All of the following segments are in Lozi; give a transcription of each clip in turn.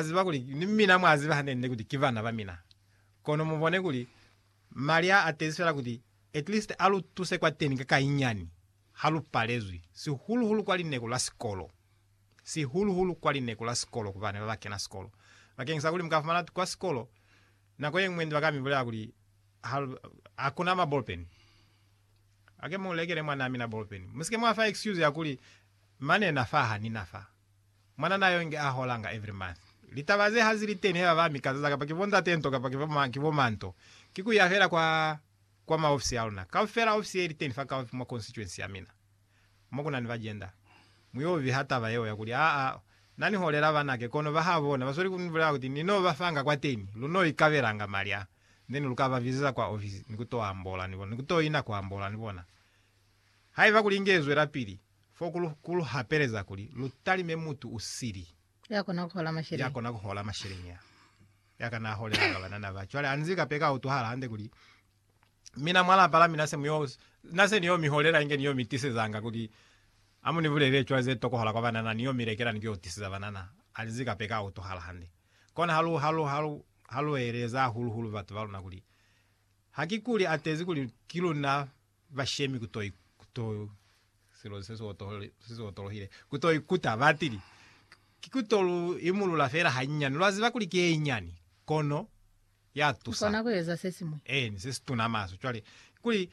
ziba kuli ni mina mwa ziba hanene kuti ki bana ba mina. Kono mu bone kuli mali a a tezi fela kuti at least a lu tuse kwateni ka kayinyani ha lu palezwi, sihulu-hulu kwa lineku la sikolo. Sihulu-hulu kwa lineku la sikolo ku bana ba ba kena sikolo. Bakeng sa kuli mu ka fumana kuti kwa sikolo nako ye ñwi ndi ba ka mi bulela kuli ha, ha ku na mabolpeni. Ake mu lekele mwanaa mina bolpeni. Mu si ke mwa fa excuse ya kuli, Mane na fa ha ni na fa. Mwanana yo nge a holanga every month. Litaba ze ha zi li teni haiba ba mi kazaza kapa ki bo ntate nto kapa ki bo ma nto, ki ku ya fela kwa, kwa ma ofisi a luna. Kaufela ofisi ye li teni fa kaufi mwa constituency ya mina, mo ku na ni ba gender. Mu yo viha taba yeo ya kuli, Aa, na ni holela banake, kono ba ha bona. Ba sweli ku ni bulela kuti, Ni no ba fanga kwateni, lu no ikabelanga mali a, then lu ka ba bizeza kwa ofisi ni ku to ambola ni bona, ni ku to ina ku ambola ni bona. Haiba kuli inge zwelapili, Fo ku lu, ku lu hapeleza kuli lu talime mutu u sili, Ya kona ku hola masheleñi. ya kona ku hola masheleñi, ya, ya kana a holela ka banana ba. Cwale anzi ka peka a utwahala hande kuli, Mina mwa lapa la mina se mu yo, na se ni yo mi holela inge ni yo mi tisezanga kuli, ha mu ni bulelele cwale ze tokohala kwa banana, ni yo mi lekela ni ku yo tiseza banana. Anzi ka peka a utwahala hande. Kona ha lu, ha lu, ha lu, ha lu eleza hahulu-hulu batu ba luna kuli, Ha ki kuli a tezi kuli ki luna bashemi ku to ikuta, batili, Ki ku to lu imulula fela hanyinyani. Lwa ziba kuli ki ye inyani, kono ya tusa. Mukona ku eza se siñwi. Eeni, se si tuna maswe. Cwale, kuli,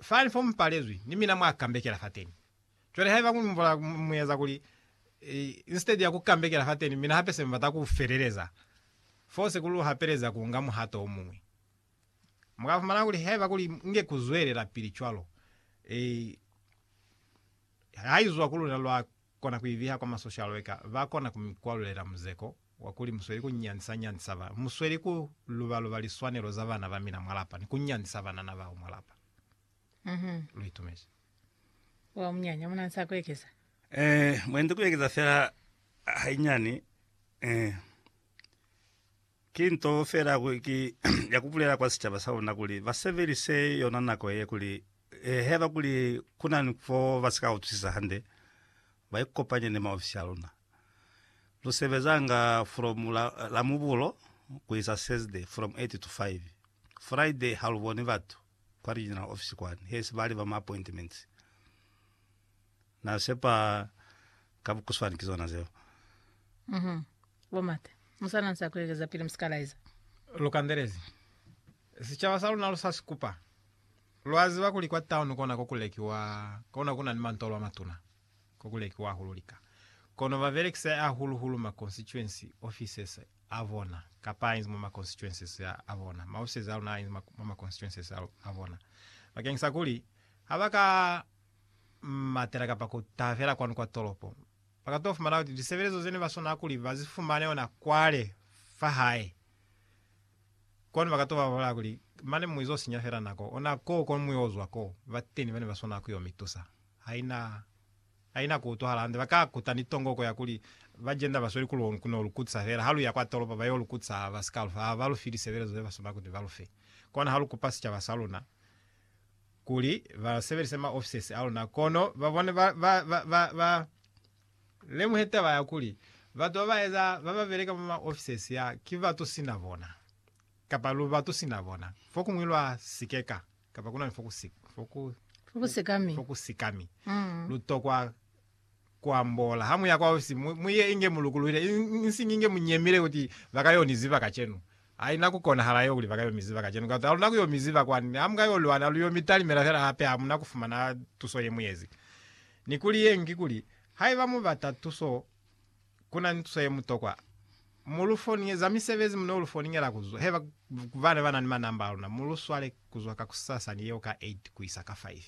fani fo mu palezwi, ni mina mwa kambekela fateni. Cwale, haiba ku mbola, mu eza kuli, instead ya ku kambekela fateni, mina hape se mu bata ku feleleza fo se ku lu hapeleza ku nga muhato o muñwi. Mu ka fumana kuli haiba kuli inge ku zwelelapili cwalo, i, haizwa ku luna lwa kona ku ibiha kwa masoshalo eka ba kona ku mi kwalulela muzeko wa kuli mu sweli ku nyandisa-nyandisa ba, mu sweli ku luba-luba liswanelo za bana ba mina mwa lapa ni ku nyandisa banana bao mwa lapa. Lu itumezi. Wa munyanya mu na ni sa ku ekeza? Eh, mwendi ku ekeza fela hainyani, eh. Ki nto fela ki ya ku bulela kwa sicaba sa luna kuli ba sebelise yona nako ye kuli haiba kuli ku na ni fo ba si ka utwisisa hande, ba ikopanye ni maofisi a luna. Lu sebezanga from Lamubulo ku isa Thursday from 8 to 5. Friday ha lu boni batu kwa regional office kwani, hesi ba liba ma appointments. Na sepa ka bukuswani ki zona zeo. Uhum. Bo Mate, musana nsa kuekeza pili musika laiza. Lu kandelezi. Sicaba sa luna lu sa si kupa. Lwa ziba kuli kwa town kona ko ku lekiwa, kona ku na ni mantolo a matuna, ko ku lekiwa hahulu lika. Kono ba belekisa hahulu hulu ma constituency offices a bona, kapa a inzi mwa ma constituencies a bona, ma offices a luna a inzi mwa ma constituencies a bona, bakeng sa kuli ha ba ka matela kapa ku tabela kwanu kwa tolopo. Ba ka to fumana kuti lisebelezo zene ba swanela kuli ba zi fumane ona kwale fa hae. Kwanu ba ka to ba bolela kuli, Mane mu izo sinya fela nako, ona koo ko mu yo zwa ko. Bateni bane ba swanela ku yo mi tusa. Haina, haina ku utwahala hande. Ba ka kuta ni tongoko ya kuli, Ba jenda ba sweli ku lu, ku no lu kutisa fela. Ha lu ya kwa tolopo, ba yo lu kutisa, ha ba si ka lu fa, ha ba lu fi lisebelezo ze ba swanela kuti ba lu fe. Kona ha lu kupa sicaba sa luna. kuli ba sebelise ma offices a luna kono ba bone ba, ba, ba, ba, ba lemuhe taba ya kuli batu ba ba eza ba ba beleka mwa ma offices ya ki batu sina bona, kapa lu batu sina bona, fokuñwi lwa sikeka, kapa kuna ni foku, foku, Fokusikami. fokusikami, Mm. lu tokwa kuambola. Hamuya kwaosi, mu, mu ye inge mu lukuluhile, i, insiñi inge mu nyemile kuti ba ka yo ni ziba kacenu. Haina ku konahala yeo kuli ba ka yo mi ziba kacenu, kauta haluna ku yo mi ziba kwani. Ha mu ka yo lwana, lu yo mi talimela fela hape, ha mu na ku fumana tuso ye mu yezi. Ni kuli ye ñwi kikuli, haiba mu bata tuso Kuna ni tuso ye mutokwa mu lu foninyeza misebezi mu no lu foninyela ku zwa heba ku bana ba na ni manamba a luna. Mu lu swale ku zwa kakusasa ni yeo ka 8 ku isa ka 5.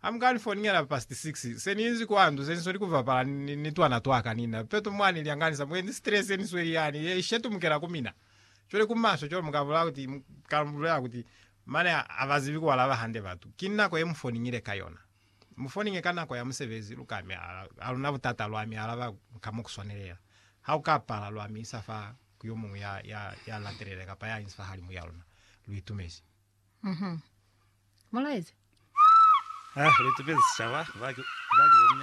Ha mu ka ni foninyela past 6, se ni inzi kwa ndu, se ni sweli ku bapala ni, ni twana twa ka ni na. Peto mwa ni lyanganisa, mu enzi stress ye ni sweli yani, ye shetumukela ku mina. Cwale ku maswe cwalo mu ka bulela kuti, mu ka bulela kuti, Mane ha ba zibi ku alaba hande batu. Ki nako ye mu foninyile ka yona. Mu foninge ka nako ya musebezi, lu ka mi alaba. Ha lu na butata, lwa mi alaba ka mo ku swanelela. Ha ku ka pala, lwa mi isa fa ku yo muñwi ya, ya, ya latelela kapa ya inzi fahalimu ya luna. Lu itumezi. Uhum. Mulaezi. Ha lu itumezi sicaba, ba ki, ba ki bo muñata.